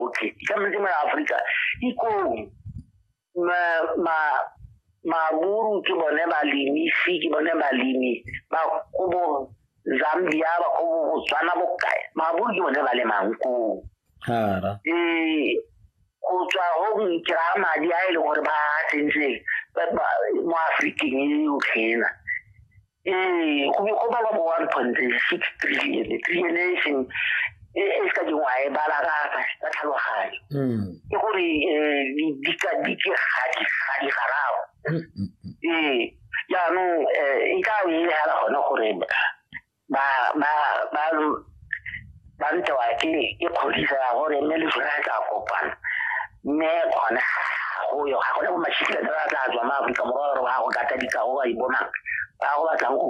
okay ke ka metse mara Africa ikong ma ma maburu ke bone balimi fi ke bone balimi ba go bo Zambia ba go bo Botswana bo kae maburu ke bone ba le manko hara eh go tswa go nkira madi a ile e gore ba tsentse mo Afrikeng e o khena ee go go bala bo one point six trillion trillion e seng e, e se ka dingwa e bala ka ka tlhaloganyo mm. ke gore um dika dike ga di ga di garago mm, mm, ee jaanong um e ka e hela gone gore ba ba ba ba ntse wa ke ke kgodiso ya gore mme le sone a tla kopana mme gone go yo ga gone bo mashitile ba tla tswa ma Afrika Borwa gore ba go kata dikago ba ibonang ba go batlang go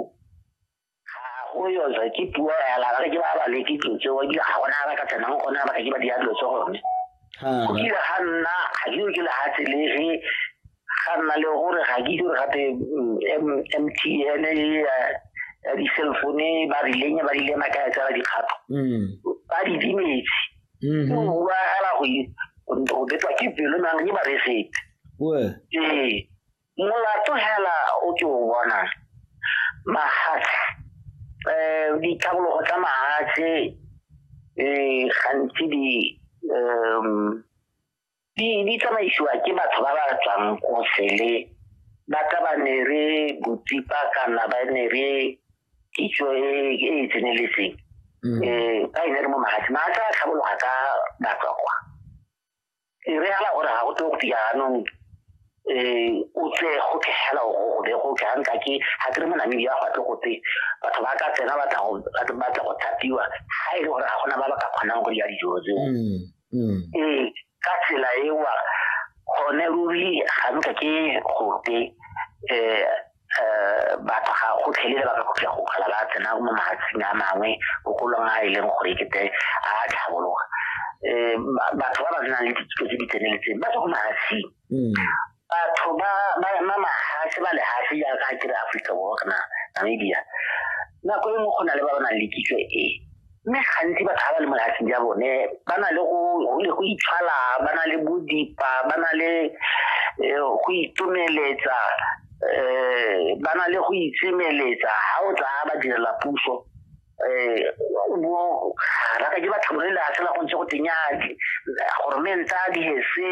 go yo tswa ke puo ya la ke ba ba le ke tlotse wa dilo ga gona ba ka tsenang gona ba ka ke ba dira dilo tse gone go kile ga nna ga ke ke le ga tselege ga nna le gore ga ke dire gape mtn mm, ya di-cell phone ba rileng ba rile maka ya tsela dikgato mm. ba di dimetse mm-hmm. o bua gala go betwa ke pelo nang ke ba re sepe ee molato hela o ke o bona mahatshe um eh, ditlhabologo tsa mahatshe um eh, gantsi di um di di tsamaisiwa ke batho ba ba tswang ko sele ba ka ba ne re botsipa kana ba ne re kitso e e e tseneletseng um ba e ne re mo magatse magatse a tlhabologa ka batswa kwa e re gala gore ga go tlo go fiya anong um o tse go tlhegela go be go tlha nka ke ga ke re mo namibia go tle go tse batho ba ka tsena batla go thapiwa ga e le gore ga gona ba ba ka kgonang go dira dijo tseo mm. ee ka tsela ewa gone ruri ga nka ke gote um um batho ga go tlhelele ba ka go go kgala ba tsena mo mahatsing a mangwe bogolong a e leng gore kete a tlhabologa um batho ba ba nang le dithuto tse di tseneletseng ba tswa ko mahatsing mm. batho ba mahatshe ba lehatshe jaaka a kere aforika borwa kana namibia nako e nngwe go na le ba ba nang le kitso e mme gantsi batho ba ba le mo lehatsheng ja bone ba na le go itshwala ba na le bodipa ba na le eh, go itomeletsa um ba na le go itsemeletsa ga o tla ba direla puso um mo raka ke batho bone la sela go ntse go tenyake goromenta a dihese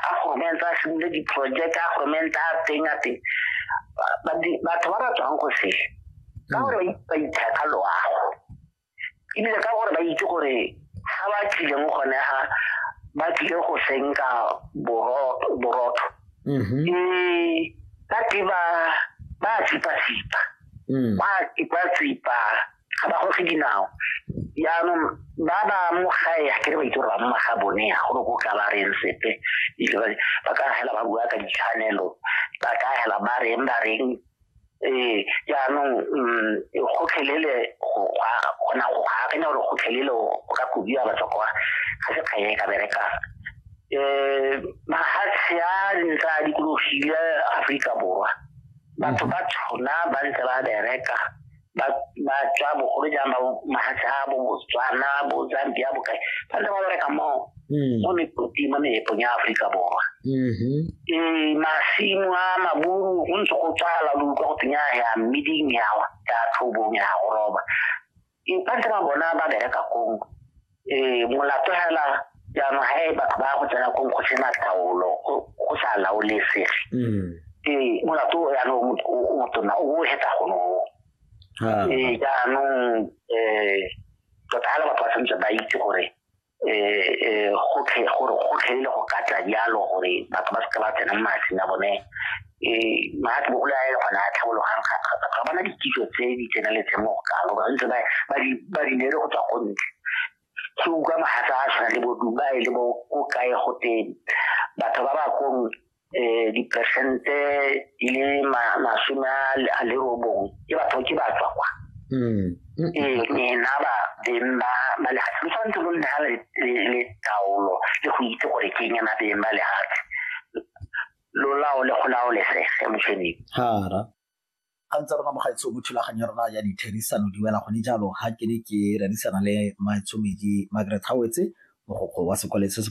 a goromenta a simile diproject a goromenta a teng a teng batho ba ba tswang go se ka mm. gore ba itheka loago ebile ka gore ba itse gore ga ba tlileng gone ga ba tlile go senka borotho mm-hmm. ee ba tle ba ba tsipa-tsipa mm. ba tsipa-tsipa ga ba goge dinao jaanong ba ba mo gae ga kere ba itse gore ba mma ga bone ya gore ko ka ba reng sepe ba ka hela ba bua ka ditshwanelo ba ka hela ba reng ba reng ee jaanong mm, gotlhelele gona go akanya gore gotlhelele o ka kobiwa batswa kwa ga se kganye e ka berekang um mahatshe a ntse a dikologile aforika borwa batho ba tshwana ba ntse ba bereka ba ba tswa bogolo jang ba mahatshe a bo botswana bo zambia bo kae ba ntse ba bereka mo Mm. mo mekoting mo meepong ya aforika borwa Mhm. ee masimo a maburu go ntse go tswala lo utlwa go teng ya ya mmeding yawa ya tlhobong ya go roba Infact ba bona ba bereka kong um molato hela jaanong ga e batho ba go tsena kong go sena taolo go sa laolesege um molato o jaanong o motona o o hetsa gono um jaanong um tota hela batho ba tshwanetse ba itse gore um gotlhe gore gotlhe e le go ka tla jalo gore batho ba seke ba tsena mo matsing a bone um maatsi bogolo a e gone a tlhabologang ga bana dikitso tse di tseneletseng mo go kalo ba ntse ba di nere go tswa go ntle se utlwa magatsa a tshwana le boduba e le bo ko kae go teng batho ba ba kong eh dipersente di le masome a le robong ke batho ke ba tswa kwa hmm. ee nena ba beng ba ba lehatshe lo tshwanetse lo nna le taolo le go itse gore ke eng ena beng ba lehatshe lo laole go laolesege motšheneng hara ga ntse rona mogaetsho mo thulaganyo ya rona ya ditherisano di wela gone jalo ga ke ne ke rerisana le maetsomedi margaret howetse mogokgo wa sekwaletse se